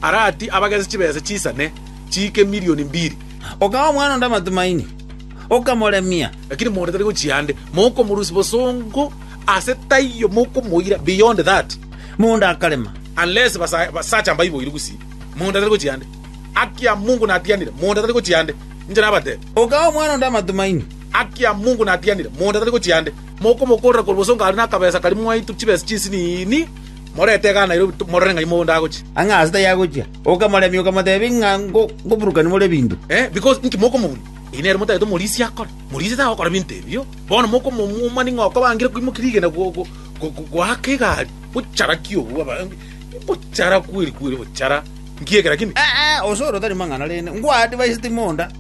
Arati abagese chibesa chisane chiike milioni mbiri. Okaha omwana onde amatumaini, okamoremia. Lakini monto tari gochia ande, mokomorusia bosongo ase taiyo, mokomoira beyond that. Monto akarema. Unless basacha mbaiboire gusii, monto tari gochia ande. Haki ya Mungu natianire, monto tari gochia ande. Inche nabatebia. Okaha omwana onde amatumaini. Haki ya Mungu natianire, monto tari gochia ande. Mokomokorera korwa bosongo aria nakabesa karia mwaitwe chibesa chinsinini. Morente iga Nairobi, timorore ng'a imogondo agochia. Ang'e aase tayagochia, okamoremia, okamotebia ng'a ngoburukani more ebinto. Because inki mokomobunia? Eyi nere motagete omorisia akore. Morisia tagokora ebinto ebio. Bono mokomomumani ng'a okobangire koimokia rigena goaka egari, bochara ki obwo? Bochara kweri kweri, bochara inki eke lakini? Ee, osore otari mang'ana rende. Ngwadivaiseti monda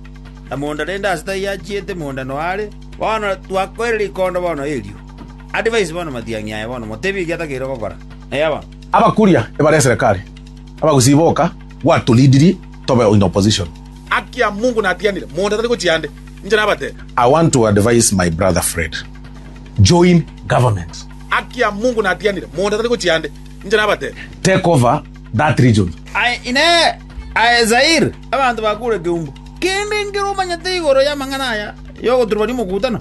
na monda rende aase tayachiete monda noyo are. Bono twakoire rikondo bono erio. Advise bono matiang'i aya bono, motebi eki atakeire gokora. Eya bono. Abakuria ebare eserekari abagusii boka gwatulidirie tobe in opposition. Haki ya mungu natianire monto atari gochia ande inche nabate. I want to advise my brother Fred join government. Haki ya mungu natianire monto atari gochia ande inche nabate. Take over that region. Aye inee! Aye Zaire! Abanto bakure keumbu kende nkere omanyete igoro y'amang'ana aya y'ogoturwa rimokutano?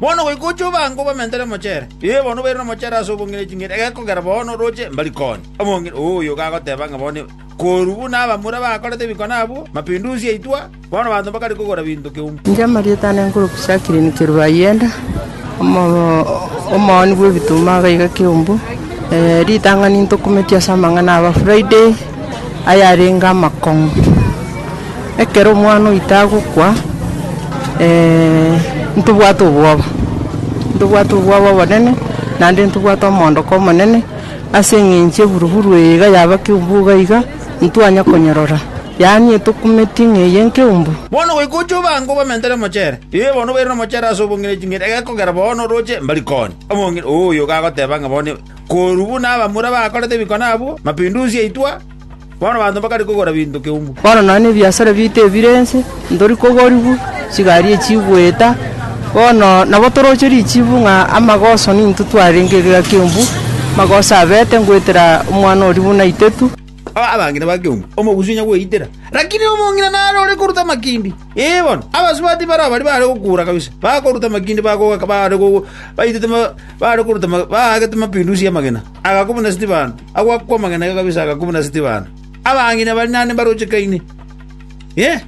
Bono goika oche obaange obamentere mochere. Ee, bono obairane mochere ase obong'ina ching'eni, egekogera bono roche mbarikoni. Omong'ina oyo gagoteba ng'a bono korwa buna abamura bakorete ebikone abwo, mapinduzi aitwa, bono abanto mbakare kogora binto keumbe. Inche Mariota ande nkorokwa Jacqueline Kiruayenda, omo- omooni bw'ebituma iga iga Kiumbu. ritang'ani ntokumeti ase amang'ana aba Friday. ayarenge amakong'u. Ekero omwana oito agokwa, ntobwate obwoba, ntobwate obwoba obonene, naende ntobwate omoondoko omonene, ase eng'encho eburuburu eye iga yaba keumbu iga iga, ntitwanya konyorora, yaani etokumeti ng'a eye nkeumbu. Bono goika oche obaange obamentere mochere. Ee, bono obairane omochere ase obong'ina ching'eni, egekogera bono oroche, mbari konya. Omong'ina, Ooyo iga agoteba ng'a bono Korwa buna abamura bakorete ebikone abwo, mapindusi aitwa, bono abanto mbakare kogora binto keumbu. Bono nonya nebiasara biaito ebire ense, ntori kogorigwa, chigari echi goeta, bono nabo toroche richibu ng'a amagoso nintwe twarenge egeka keumbu, amagoso abete ngoetera omwana oria buna itetu. Abang'ina bakeonga omogusu onya gweitera, lakini omong'ina nare ore koruta amakindi. Ee bono, abasubati baria baria baare gokuura kabisa, bakoruta amakindi bagoaka baare baitete baare koruta baagete mapindusi y'amagena, agakwa buna Stefano, agoakwa amagena kabisa agakwa buna Stefano. Abang'ina baria naende mbarochekaine. Ee.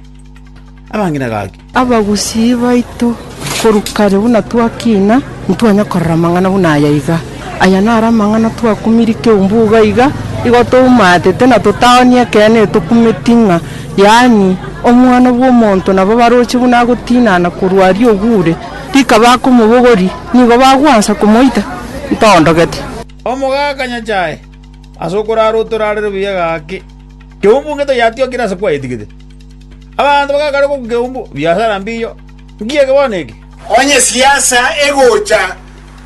amang'ina gake. Abagusii baito korwa kare buna twakina, ntwanya korora amang'ana buna aya iga. Aya naro amang'ana twakumirie keumbu iga iga, igo toumatete na totaoni ekeene etokumeti ng'a yaani Omwana bw'omonto nabo baroche buna agotinana korwa aria ogure, rika bakomobogoria, nigo bagwansa komoita, ntoondogete. Omogaka Nyasae, ase okorara otorarere buya gake, keumbu ngeto yatiokire ase kwaetigete. Abanto bagakaria gokwa ekeumbu, Biasara mbiiyo! Nki eke bono eke? Onye esiasa egocha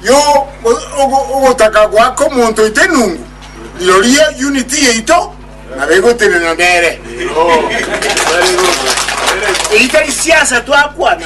y'ogotaka gwa omonto oito enungu, rirorio unit yaito nabo egotenena nere. Eyi tari siasa twakwana.